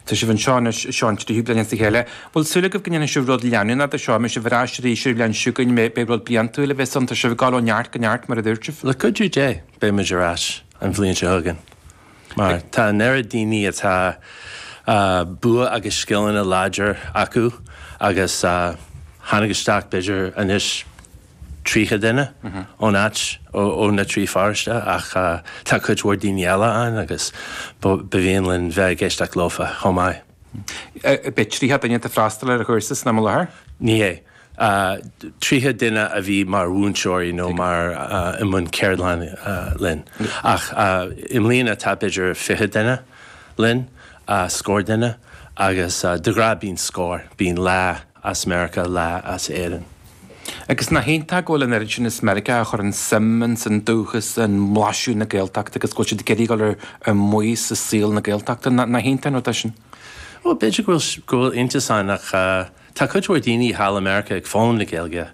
Tá sibh anseo anois, seo an tríú bliain as a chéile. Bhfuil súil agaibh go ndéanfaidh sibh rud leanúnach de seo? An mbeidh sibh ar ais arís an bhliain seo chugainn, an mbeidh rud bliantúil a bheas ann, tá sibh ag dul ó neart go neart, mar a dúirt mé. Le cuidiú Dé, beidh muid ar ais an bhliain seo chugainn, mar tá an oiread daoine a tá buanna agus scileanna láidir acu agus tháinig isteach b'fhéidir anois, 30 duine ón áit, ó na trí pharóiste, ach tá cuid mhór daoine eile ann agus ba mhian linn bheith ag éisteacht leofa chomh maith. An bhfuil 30 duine ag freastal ar an chúrsa san am i láthair? Ní hé. 30 duine a bhí mar mhúinteoirí nó mar i mbun ceardlann linn, ach i mbliana tá b'fhéidir 20 duine linn, scór duine, agus de ghnách bíonn scór, bíonn leath, as Meiriceá leath as Éirinn. Agus nach iontach go bhfuil an oiread sin as Meiriceá a chuireann suim ins an dúchas, i mblaiseadh na Gaeltachta agus go bhfuil siad ag iarraidh dul ar maos i saol na Gaeltachta. Nach iontach an rud é sin? Bhuel, b'fhéidir go bhfuil, go bhfuil iontas ann ach tá cuid mhór daoine thall i Meiriceá ag foghlaim na Gaeilge.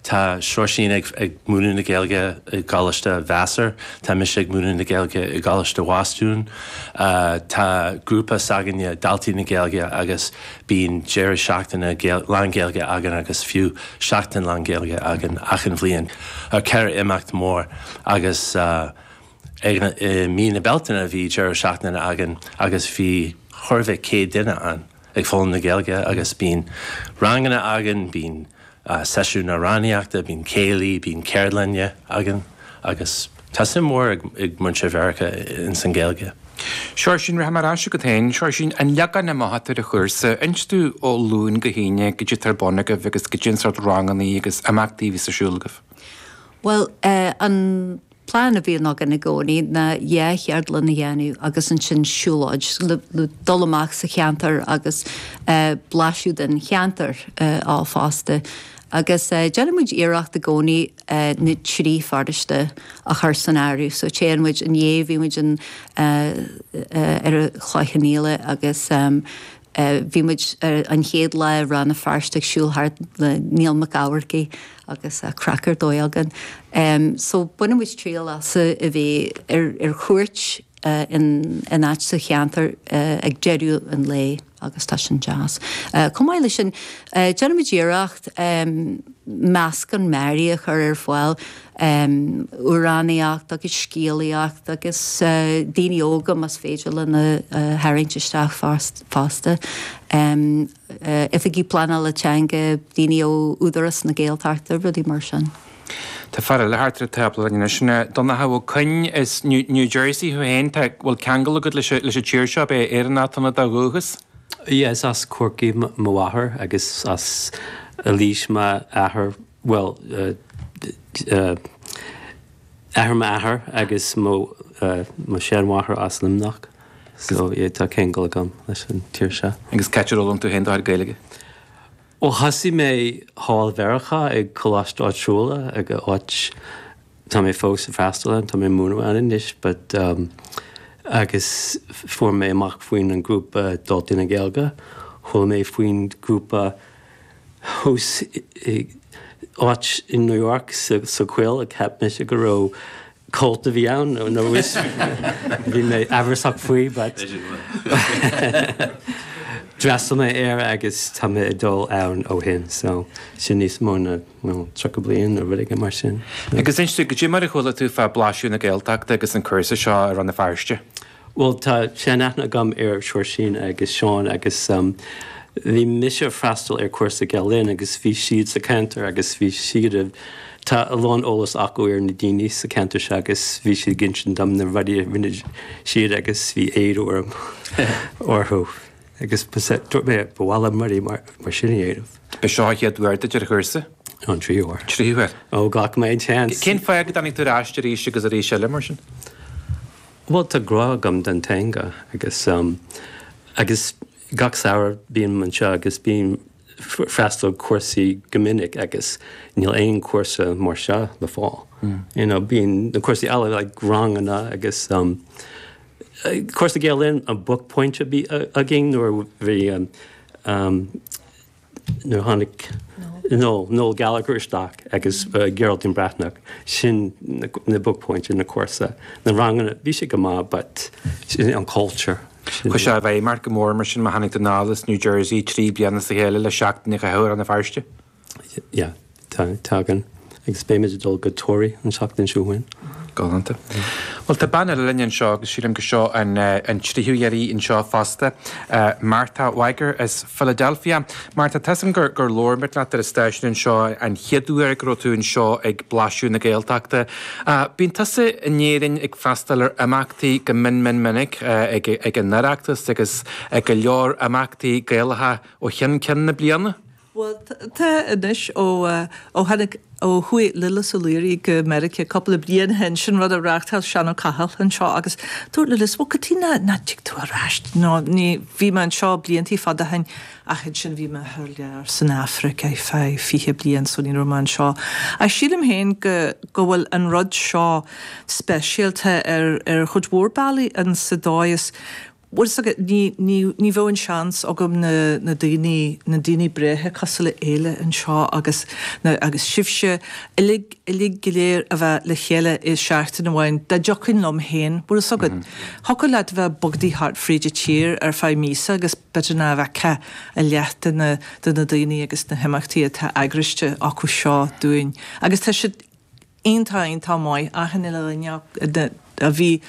Tá Seoirsín ag múineadh na Gaeilge i gColáiste Vassar, tá mise ag múineadh na Gaeilge i gColáiste Bhostún. Tá grúpa s'againne, Daltaí na Gaeilge, agus bíonn deireadh seachtaine lán-Ghaeilge againn agus fiú seachtain lán-Ghaeilge againn achan bhliain. ceithre imeacht mhóra agus i mí na Bealtaine bhí deireadh seachtaine againn agus bhí chóir a bheith céad duine ann ag foghlaim na Gaeilge agus bíonn ranganna againn, bíonn seisiún amhránaíochta, bíonn céilí, bíonn ceardlanna againn agus tá suim mhór ag muintir Mheiriceá ins an Ghaeilge. Seoirsín, rachaidh mé ar ais agat féin. Seoirsín, An leagan amach atá ar an chúrsa. Inis dúinn ó Luan go hAoine, goidé atá ar bun agaibh agus goidé an sórt rangannaí agus imeachtaí a bhíos ar siúl agaibh. Bhuel eh, an. Plean a bhíonn againn i gcónaí ná dhá cheardlann a dhéanamh agus ansin siúlóid, nó dul amach sa cheantar agus blaiseadh den cheantar fosta. Agus déanann muid iarracht i gcónaí na trí pharóiste a chur san áireamh. So téann muid inné, bhí muid in ar Chloich Cheann Fhaola agus Bhí muid ar an chéad lá i Rann na Feirste ag siúl thart le Niall Mac Eachmharcaigh agus craic ar dóigh againn. So baineann muid triail as a bheith ar chuairt in áit sa cheantar ag deireadh an lae agus tá sin deas. Chomh maith leis sin déanann muid iarracht meascán mearaí a chur ar fáil amhránaíocht agus scéalaíocht agus daoine óga más féidir linn a tharraingt isteach fosta, Oifigigh Pleanála Teanga, daoine ó Údarás na Gaeltachta, rudaí mar sin. Tá fear eile thart ar an tábla linn anois, Donncha Ó Coinn, is New Jersey thú féin, tá, bhfuil ceangal agat leis an tír seo, an bhfuil Éirinn i do dhúchas? Yeah, is as Corcaigh mo mháthair agus as Laois m'athair. bhuel. athair m'athar agus mo sheanmháthair as Luimneach so tá ceangal agam leis an tír seo. Agus cad é ról an tú féin d'athair Gaeilge? Bhuel thosaigh mé thall i Meiriceá ag coláiste áitiúil ag a áit tá mé fós ag freastal ann, tá mé ag múineadh ann anois but agus fuair mé amach faoin an grúpa Daltaí na Gaeilge, chuala mé faoin grúpa, thuas in áit i New York sa choill, cheap mise go raibh cult a bhí ann nó bhí mé amhrasach faoi but d'fhreastail mé air agus tá mé ag dul ann ó shin so sin níos mó ná 30 bliain nó rud éigin mar sin. Agus inis dúinn goidé mar a chuala tú fá dtaobh de Blaiseadh na Gaeltachta agus an cúrsa seo i Rann na Feirste? Bhuel, tá seanaithne agam ar Seoirsín agus Seán agus bhí mise a' freastal ar cúrsa Gael Linn agus bhí siad sa cheantar agus bhí siad a, tá a lán eolas acu ar na daoine sa cheantar seo agus bhí siad ag insint dom na rudaí a rinne siad agus bhí éad orm leo agus dúirt mé ba mhaith liom rudaí mar sin a dhéanamh. Ba seo an chéad uair duit ar an chúrsa? No, an tríú huair. Tríú huair. Ó, ghlac mé an tseans. Cén fáth go dtáinig tú ar ais arís agus arís eile mar sin? Bhuel, tá grá agam don teanga agus agus gach samhradh bím anseo agus bím freastal cúrsaí go minic agus níl aon cúrsa mar seo le fáil. You know, bíonn na cúrsaí eile like ranganna agus cúrsa Gael Linn an buaicphointe a bhí againn nuair a bhí nuair a tháinig Noel Gallagher isteach agus Geraldine Breathnach, sin na buaicphointí ar na cúrsa. Na ranganna, bhí sé go maith but sin an cultúr. Chuir sé i bhfeidhm ort go mór mar sin má tháinig tú anall as New Jersey trí bliana as a chéile le seachtain a chaitheamh i Rann na Feirste? Yeah. Tá, tagann. Agus beimid ag dul go Toraigh an tseachtain seo chugainn. Galánta. Bhuel, tá bean eile linn anseo agus sílim gur seo an tríú huair di anseo fosta, Martha Wager as Philadelphia. Martha, tá 's agam gur labhair muid leat ar an stáisiún anseo an chéad uair go raibh tú anseo ag Blaiseadh na Gaeltachta. Bíonn tusa in Éirinn ag freastal ar imeachtaí go min min minic, ag an Oireachtas agus ag go leor imeachtaí Gaelacha ó cheann ceann na bliana. Bhuel, tá anois, ó, ó tháinig, ó chuaigh Lillis Ó Laoire go Meiriceá cúpla bliain ó shin, sin rud a reáchtáil Seán Ó Cathail anseo agus dúirt Lillis, bhuel, cad chuige nach, nach dtig tú ar ais, nó ní, bhí mé anseo bliantaí fada ó shin ach ansin bhí mé thar lear san Afraic ar feadh fiche bliain so ní raibh mé anseo ach sílim féin go, go bhfuil an rud seo speisialta ar, ar chuid mhór bealaí an, sa dóigh is go. bhfuil 's agat, ní, ní, ní bheadh an seans agam na, na daoiní, na daoiní breátha cosúil le Éile anseo agus na, agus sibhse uilig, uilig go léir a bheith le chéile i seachtain amháin, dá dtiocfainn liom féin, bhfuil 's agat. Thiocfadh leat a bheith bogadaigh thart fríd an tír ar feadh míosa agus b'fhéidir nach bhfeicfeá a leath de na, de na daoiní agus na himeachtaí atá eagraiste acu seo dúinn. Agus tá siad. Iontach, iontach maith, achan uile dhuine a bhí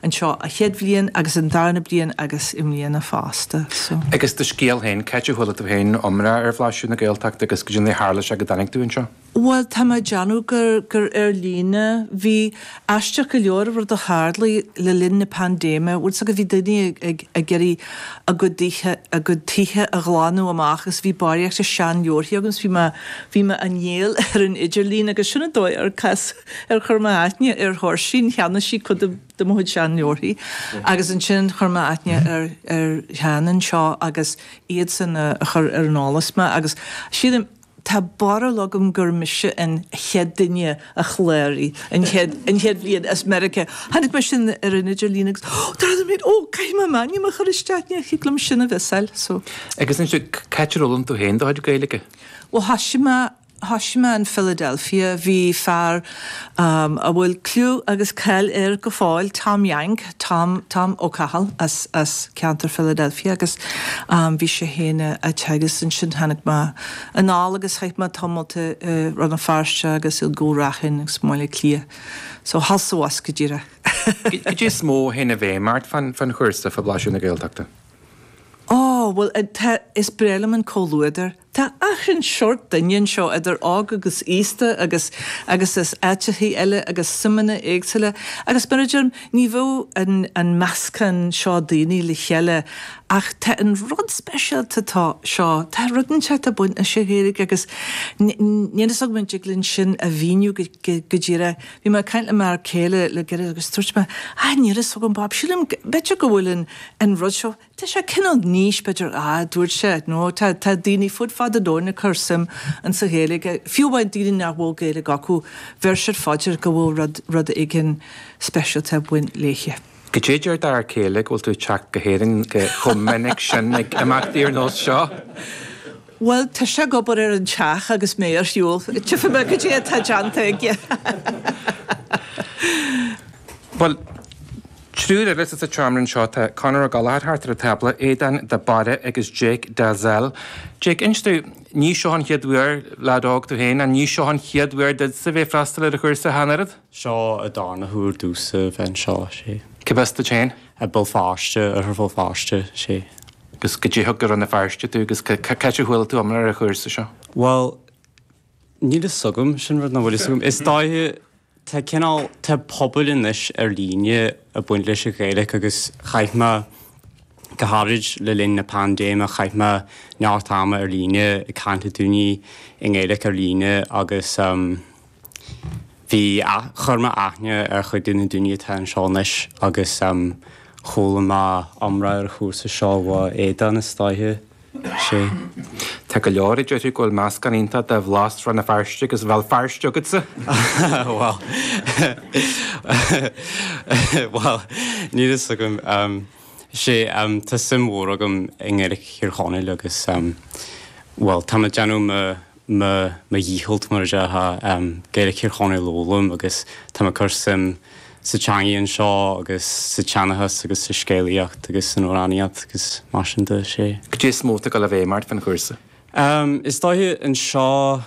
anseo an chéad bhliain agus an darna bliain agus i mbliana fosta so. Agus do scéal féin, cá háit a chuala tú féin iomrá ar Bhlaiseadh na Gaeltachta agus goidé an dóigh ar tharla sé go dtáinig tú anseo? Bhuel, tá mé ag déanamh gur gur ar líne. Bhí aisteach go leor, rud a tharlaigh le linn na paindéime, bhfuil 's agat bhí daoine ag ag iarraidh a gcuid tithe a ghlanadh amach agus bhí barraíocht de shean-leabharthaí agam agus bhí mé, bhí mé á ndíol ar an idirlíon agus sin an dóigh ar casadh, ar chuir mé aithne ar Thóirsín, cheannaigh sí cuid de mo chuid sean-leabharthaí agus ansin chuir mé aithne ar, ar Sheán anseo agus iadsan a, a chuir ar an eolas mé agus sílim, Tá barúil agam gur mise an chéad duine a chláraigh an chéad, an chéad bhliain as Meiriceá. Chonaic mé sin ar an idirlíon agus oh, dar liom féin, oh, caithfidh mé m'ainm a chur isteach, ní thig liom sin a mhissáil, so. Agus ansin, cá háit ar fhoghlaim tú féin do chuid Gaeilge? Bhuel thoisigh mé, thoisigh mé in Philadelphia, bhí fear. a bhfuil cliú agus cáil air go fóill, Tom Yank, Tom, Tom Ó Cathail, as, as ceantar Philadelphia agus bhí sé fhéin a' teagasc agus ansin tháinig mé anall agus chaith mé tamalt i, i Rann na Feirste agus i gCúil Raithin agus i mBaile Átha Cliath. So thall is abhus go díreach. Goidé is mó a théann i bhfeidhm ort fán, fán chúrsa, fá bhlaiseadh na Gaeltachta? Ó bhuel tá, is breá liom an comhluadar Tá achan seort duine anseo, idir óg agus aosta agus agus as áiteachaí eile agus suimeanna éagsúla agus mar a deirim, ní bheadh an an meascán seo daoine le chéile ach tá an rud speisialta tá seo, tá rud inteacht a bhaineas leis an Ghaeilge agus níl fhios agam an dtig linn sin a mhíniú go go díreach. Bhí mé ag caint le m'fhear céile le gairid agus dúirt mé, ah níl fhios agam Bob, sílim, b'fhéidir go bhfuil an an rud seo, Tá sé cineál níos, b'fhéidir, a dúirt sé, nó tá daoine fud fad an domhain ag cur suim in sa Ghaeilge, fiú amháin daoine nach bhfuil Gaeilge acu, bheir siad fá dear go bhfuil rud, rud éigin speisialta ag baint léithe. Goidé deir d'fhear céile go bhfuil tú ag teacht go hÉirinn chomh minic sin ag imeachtaí ar nós seo. Bhuel, tá sé ag obair ar an teach agus mé ar shiúl, tchifidh mé goidé atá déanta aige. Bhuel, Triúr eile sa tseomra anseo, tá Conor O'Gallagher thart ar an tábla, Aodán de Barra agus Jake Dalzell. Jake, inis tú, ní seo an chéad uair, lead óg tú féin, an ní seo an chéad uair duitse bheith ag freastal ar an chúrsa cheana, an oiread? Seo an darna huair domhsa bheith anseo, sé. Cérb as duit féin? I Béal Feirste, Oirthear Bhéal Feirste, sé. Agus goidé thug go Rann na Feirste tú, agus cad as a chuala tú iomrá ar an chúrsa seo? Bhuel, níl fhios agam, sin rud nach bhfuil fhios agam. Is dóiche. Tá cineál, tá pobal anois ar líne ag baint leis an Ghaeilge agus chaith mé, go háirid le linn na paindéime, chaith mé neart ama ar líne ag caint le daoine i nGaeilge ar líne agus bhí, chuir mé aithne ar chuid de na daoine atá anseo anois agus chuala mé iomrá ar an chúrsa seo uaidh Aodán is dóiche. sé. Tá go leor a déarfadh go bhfuil meascán iontach de bhlas Rann na Feirste agus Bhéal Feirste agatsa! Bhal. Bhal, níl fhios agam. sé, tá suim mhór agam i nGaeilge Thír Chonaill agus, bhuel, tá mé ag déanamh mo. mo dhícheallt mar a déarfá. Gaeilic Thír Chonaill a fhoghlaim agus tá mé ag cur suim sa teangaidh anseo agus sa tseanchas agus sa scéalaíocht agus san amhránaíocht agus mar sin de. Sé. Cad é is mó atá ag dul i bhfeidhm ort faoin chúrsa? Is dóiche anseo,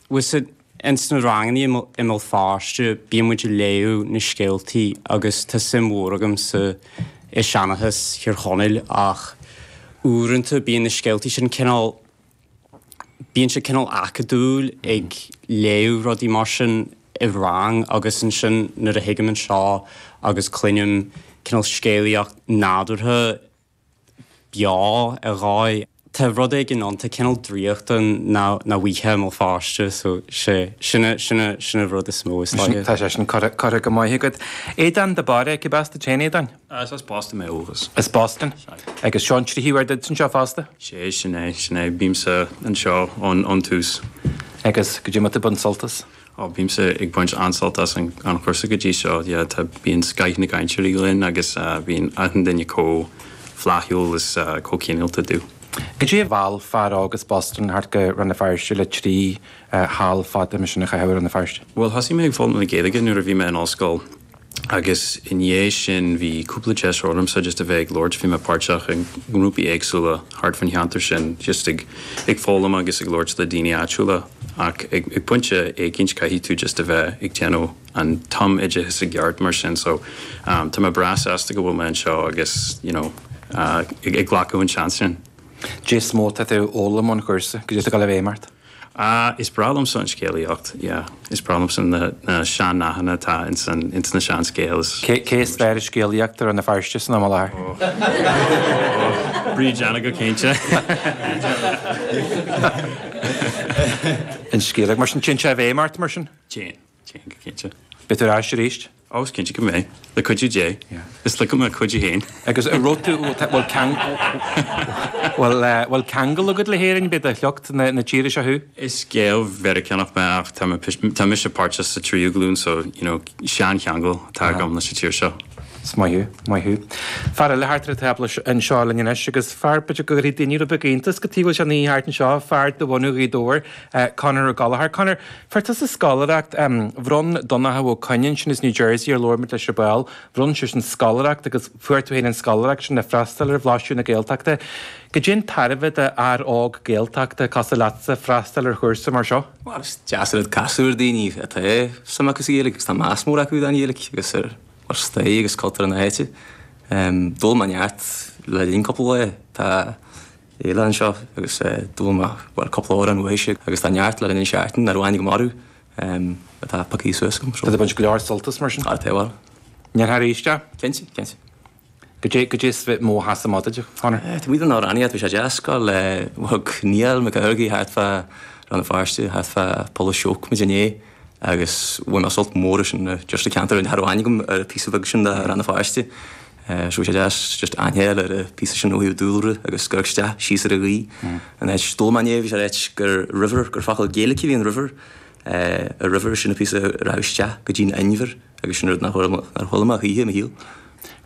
bhuel ins na rangannaí i mBéal Feirste bíonn muid ag léamh na scéaltaí agus tá suim mhór agam sa i seanchas Thír Chonaill ach uaireanta bíonn na scéaltaí sin cineál bíonn sé cineál acadúil ag léamh rudaí mar sin i rang agus ansin nuair a thigim anseo agus cluinim cineál scéalaíocht nádúrtha beo ar dhóigh, tá rud éigin ann, tá cineál draíochta ann nach bhfaighfeá i mBéal Feirste so sé, sin a, sin a, sin a rud is mó is dóiche. Tá sé sin curtha go maith agat. Aodán de Barra, cérb as duit féin, Aodán? Is as Boston mé ó dhúchas. As Boston. Agus seo an tríú uair duit anseo fosta? Sea, sin é, sin é. Bímse anseo ón tús. Agus goidé, an bhfuil tú ag baint sult as? Ó, bímse ag baint an-sult as an chúrsa go dtí seo. Yeah, tá, bíonn scoth na gcainteoirí linn agus bíonn achan duine comh flaithiúil is comh cineálta do. Goidé a mheall fear óg as Boston thart go Rann na Feirste le trí sheal fada, mar sin, a chaitheamh i Rann na Feirste? Bhuel, thosaigh mé ag foghlaim na Gaeilge nuair a bhí mé in ollscoil. agus i ndiaidh sin bhí cúpla deis agamsa just a bheith ag labhairt, bhí mé páirteach i ngrúpaí éagsúla thart fan cheantar sin just ag ag foghlaim agus ag labhairt le daoine áitiúla ach ag ag pointe éicínt caithfidh tú just a bheith ag déanamh an tumoideachas i gceart mar sin so tá mé breá sásta go bhfuil mé anseo agus you know ag ag glacadh an seans sin. Caidé is mó atá tú ag foghlaim ón chúrsa go dtí seo Gaillimh Aon mbeart? Ah, is breá liomsa an scéalaíocht, yeah. Is breá liomsa na sean-nathanna atá ins na seanscéalta. Cé is fearr ag scéalaíocht i Rann na Feirste san am i láthair? Oh, Bríd Anna go cinnte. Bríd Anna. An scéalaíocht, mar sin. Téann sé i bhfeidhm ort, mar sin? Téann. Téann go cinnte. Beidh tú ar ais arís? Ó is cinnte go mbeidh, le cuidiú Dé. Is le do chuidiú féin. Agus a raibh tú, bhfuil ceangal, bhfuil ceangal agat le hÉirinn? B'é de shliocht na tíre seo thú? Is Gael Meiriceánach mé ach tá mé, tá mise páirteach sa tríú glúin so, you know, seancheangal atá agam leis an tír seo. Is maith thú, maith thú. Fear eile thart ar an tábla anseo linn anois, agus fear, b'fhéidir go gcuirfidh daoine rud beag iontas caidé go bhfuil sé amuigh thart anseo, fear de bhunadh Ghaoth Dobhair, Conor Gallagher. Conor. Fuair tusa scoláireacht. Bhronn Donnchadh Ó Cuinn ansin as New Jersey, ar labhair muid leis ar ball, bhronn seisean scoláireacht agus fuair tú féin an scoláireacht sin le freastal ar Bhlaisiú na Gaeltachta. Caidé an tairbhe d'fhear óg Gaeltachta cosúil leatsa freastal ar chúrsa mar seo. Bhuel, is deas an rud casadh ar daoine a tá suim acu sa Ghaeilge agus tá meas mór acu don Ghaeilge agus ar stair agus cultúr na háite. D'fhoghlaim mé neart le linn cúpla lá. Tá. oileán seo agus dul amach, bhuel, cúpla uair amuigh ansin agus tá neart le linn an seachtain, ar ndóighe go mór atá pioctha suas agam. Tá tú ag baint go leor sult as mar sin? Tá, tá, bhuel. Níor tháir éis é? Cinnte, cinnte. Caidé, caidé is mó a sheas amach duit, Conor? Tá muid an ár ann iad, bhí sé deas go le bhog Niall Mac Gairbhigh thart fá Rann na Feirste, thart fá Poll a' Seúc muid inné. Agus bhain mé sult mór as sin just an ceantar féin, cha raibh aithne agam ar an phíosa bheag sin de Rann na Feirste. Sea, bhí sé deas just aithne a fháil ar an phíosa sin ó thaobh dúlra agus ag amharc isteach, síos ar an ghaoth. An áit a d'fhoghlaim mé é, bhí sé ag ráit gur river, gur focal Gaeilic a bhí in river. A river, sin an píosa a raghadh isteach go dtí an inbhear agus sin rud nár chuala mé choíche i mo shaol.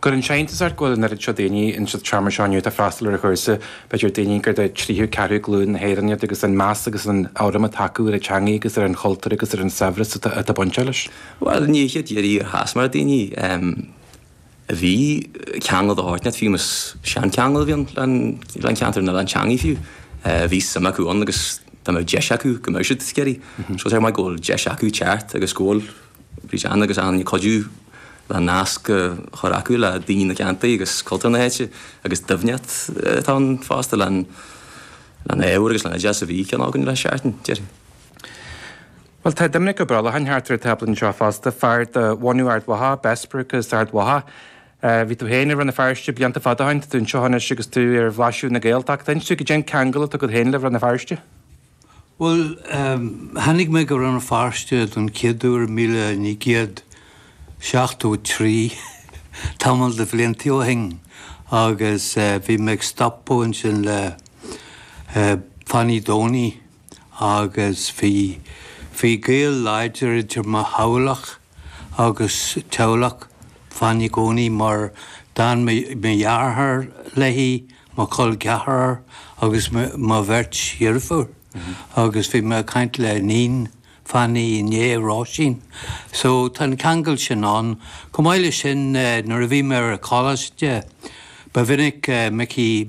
An gcuireann sé iontas ort go bhfuil an oiread seo daoine ins an seomra seo inniu atá ag freastal ar an chúrsa, b'fhéidir daoine gur de tríú ceathrú glúin na hÉireann iad, agus an meas agus an urraim atá acu ar an teangaidh agus ar an chultúr agus ar an saibhreas atá bainteach leis. Bhuel, neach ar bith a chas mé ar dhaoine a bhí ceangal de short, fiú más seancheangal a bhí ann don cheantar nó don teangaidh fiú, bhí suim acu ann agus dá mbeadh deis acu go mbeadh siad ag iarraidh. Is maith go bhfuil deis acu teacht agus go bhfuil. Bhí Jeanne agus Anne ag cuidiú le nasc a chur acu le daoine na gceantaí agus cultúr na háite agus doimhneacht atá ann fosta lena n-ábhar agus lena n-oideas a bhí cheana againn le seachtain, deir sí. Bhuel, tá Doiminic Ó Brolcháin thart ar an tábla anseo fosta, fear de bhunadh Ard Mhacha, Bessbrook as Ard Mhacha. Bhí tú féin i Rann na Feirste blianta fada ó shin, tá tú anseo anois agus tú ar bhlaiseadh na Gaeltachta. Inis dom cad é an ceangal atá agat féin le Rann na Feirste? Bhuel, tháinig mé go Rann na Feirste don chéad uair i míle naoi gcéad seachtó a trí, tamall de bhlianta ó shin, agus bhí mé ag stopadh ansin le Fanny Donie, agus bhí gaol láidir idir mo theaghlach, agus teaghlach Fanny i gcónaí mar d'fhan mo dheartháir léi, mo chol ceathrar agus mo bheirt dheirfiúr agus bhí mé ag caint le níon Fanny inné, Róisín, so tá an ceangal sin ann. Chomh maith leis sin nuair a bhí mé ar coláiste ba mhinic Micí,